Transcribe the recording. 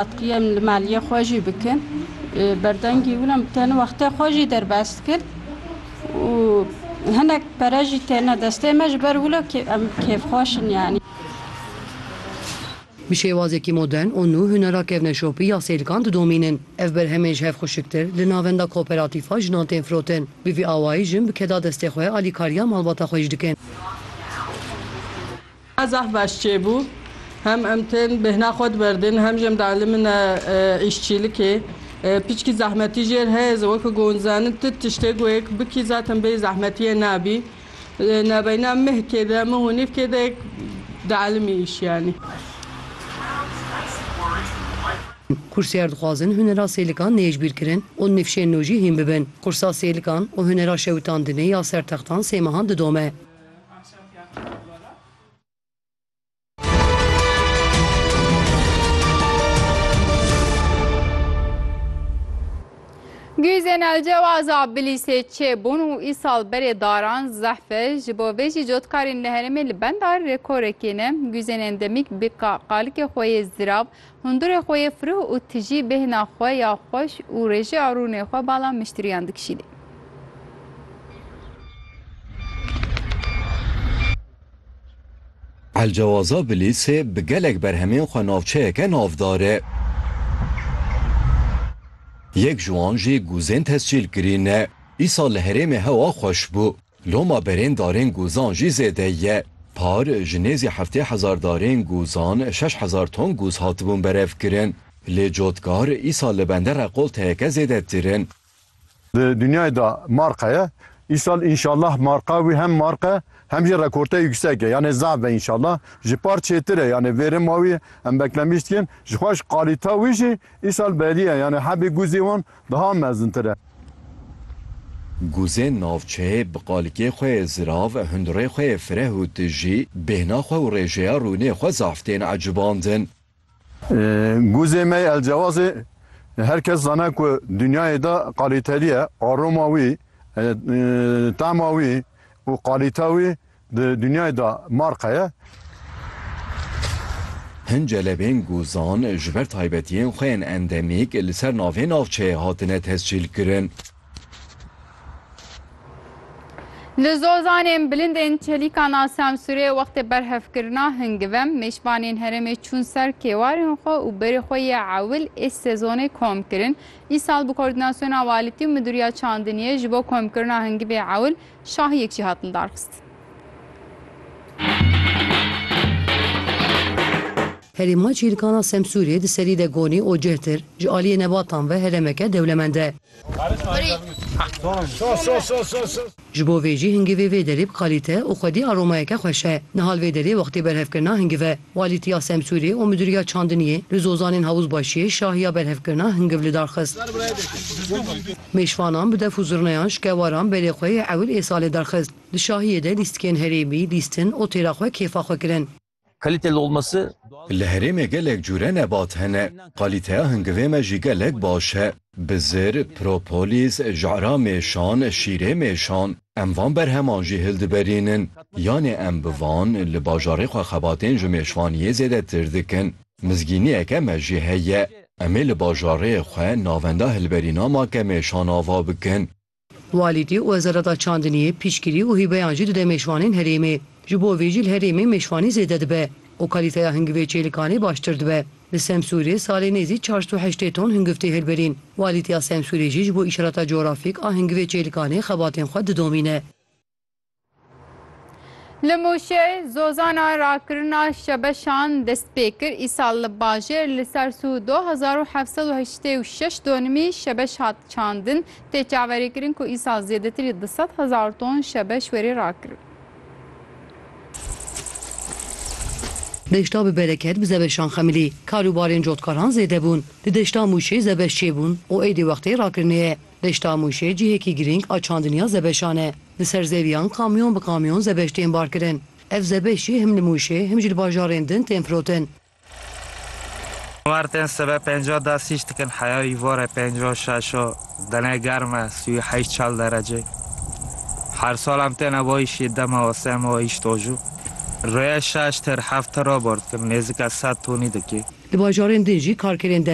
Em li maliyê xwe jî bikin berdengî wina em tên wextê xwe jî derbas kir û hinek pere jî têne destê me ji ber wilo kê em kêfxweş in yanî. Bi şêwazekî modern û nû hunera kevneşopî ya sêlkan didomînin. Ev berhemên ji hev xuşiktir li navenda kooperatîfa jinan tên firotin. Bi vî awayî jin bi keda destê xwe alîkariya malbata xwe jî dikin. Zaf baş çêbû. Hem em tên bêhna xwe diberdin hem jî em dielîmine îşçîlikê. Piçkî zehmetî jêr heye zi weke ku hûn dizanin tu tiştê ku yek bikî zaten bêyî zehmetiyê nabî. Nabeyna mihkê de mih û nîvkê de yek dielîmî îş yanî. Kursiyar dixwazin hunera sêlikan nêjbîrkirin û nifşên nû jî hîn bibin. Kursa sêlikan û hunera şewitandinê ya ser textan sê mehan didome. Guyzên El Cewaza Bilîsê çêbûn û îsal berê daran zehfe ji bo vê jî cotkarên li herêmê li benda rêkorekê ne. Guyzên endemîk bi qalikê xwe yê zirav Hundirê xwe yê firûh û tijî bêhna xwe ya xweş û rêjê a rûnê xwe bala miştiriyan dikişînê. Elcewaza Bilîsê bi gelek berhemên xwe navçeyeke navdar e. Yek ji wan jî Guzên Tescîlkirîn e. Îsal li herêmê hewa xweş bû. Loma berên darên gûzan jî zêde ye. Par ji nêzî heftê hezar darên gûzan şeş hezar ton gûz hatibûn berevkirin. Lê cotkar îsal li bende rekolteyeke zêdetir in. Di dinyayê de marqa ye. Îsal înşallah marqa wî hem marq e hem jî rekorteyê yûksek e. Yanê zaf be înşallah. Ji par çêtir e. Yanê vê rima wî em beklemîş dikin. Jixweş qalîta wî jî îsal belî ye. Yanê hebî gûzê wan. Daha mezintir e. Guzên navçeyê bi qalikê xwe yê zirav, hundirê xwe yê fireh û tijî, bêhna xwe û rêjeya rûnê xwe zaf tên ecibandin. Guzê me yê Elcewazê her kes zane ku dinyayê de qalîtelî ye, aroma wî, tema wî û qalîta wî Di dinyayê de marka ye. Hin celebên guzan ji ber taybetiyên xwe yên endemîk li ser navê navçeyê hatine tescîlkirin. Li Zozanê bilindên çelîkana sensûrê wextê berhevkirina hingivem, mêşvanên herêmê çûn ser kêwarên xwe û berê xwe yê ewil ê sezonê kom kirin. Îsal bi kordînasyona walîtî û midûriya çandiniyê ji bo komkirina hingivê ewil Şahiyek jî hatin darxistin. Herêma Çîrkan a Semsûrê di serî de gonî û cihtir, ji aliyê nebatan ve herêmeke dewlemend e. Ji bo vê jî hingivê vê derê bi kalîte û xwedî aromayeke xweş e. Nihal vê derê wextê berhevkirina hingiv e. Walîtiya Semsûrê û Midûriya Çandiniyê li Zozanên Havuzbaşiyê şahiya berhevkirina hingiv lidar xist. Mêşvanan bi def û zurnayan ji kewaran berê xwe yê ewil ê salê derxist. Di şahiyê de lîstikên herêmî, lîstin, otêra xwe kêfa xwe kirin. Kaliteli olması doğal. Li herêmê gelek cure nebat hene. Kalîteya hingivê me jî gelek baş e. Bizir, Propolis, Jara mêşan, Şîrê mêşan. Em van berheman jî hildiberînin, yanê em bi van li bajarê xwe xebatên ji mêşvaniyê zêdetir dikin. Mizgîniyeke me jî heye, em ê li bajarê xwe navenda hilberîna makemêşan ava bikin. Walîtî û Wezareta Çandiniyê piştgirî û hîbeyan jî dide mêşvanên herêmê. Ji bo vê jî li herêmê mêşvanî zêde dibe û kalîteya hingivê çêlikanê baştir dibe. Li Semsûrê salê nêzî çar sed û heştê ton hingiv tê hilbirîn. Walîtiya Semsûrê jî ji bo îşarata cografîk a hingivê Çêlikanê xebatên xwe didomîne. Li Mûşê zozana rakirina şebeşan dest pê kir. Îsal li bajêr li ser sû du hezar û heft sed û heştê û şeş donimî şebeş hat çandin. Tê çaverêkirin ku îsal zêdetirî du sed hezar ton şebeş were rakirin. Deşta bi bereket bi zebeşan xemilî. Kar û barên cotkaran zêde bûn. Di deşta Mûşê zebeş çêbûn û êdî wextê rakirine ye. Deşta Mûşê cihêkî girîng a çandiniya zebeşan e. Li ser zêwiyan kamyon bi kamyon zebeş tên barkirin. Ev zebeş jî him li Mûşê him jî li bajarên din tên firotin. Mar tên sebe pênca da sîc dikin heya îvore pênca şaşo dene germ e sî û heşt çal derecê. Her sal em têne bo îşî dema o sê ma îş dojû. Rêye şaş têr heft tira bor dikin nêzika sed tonî dikî. Di bajarên din jî karkerên dem.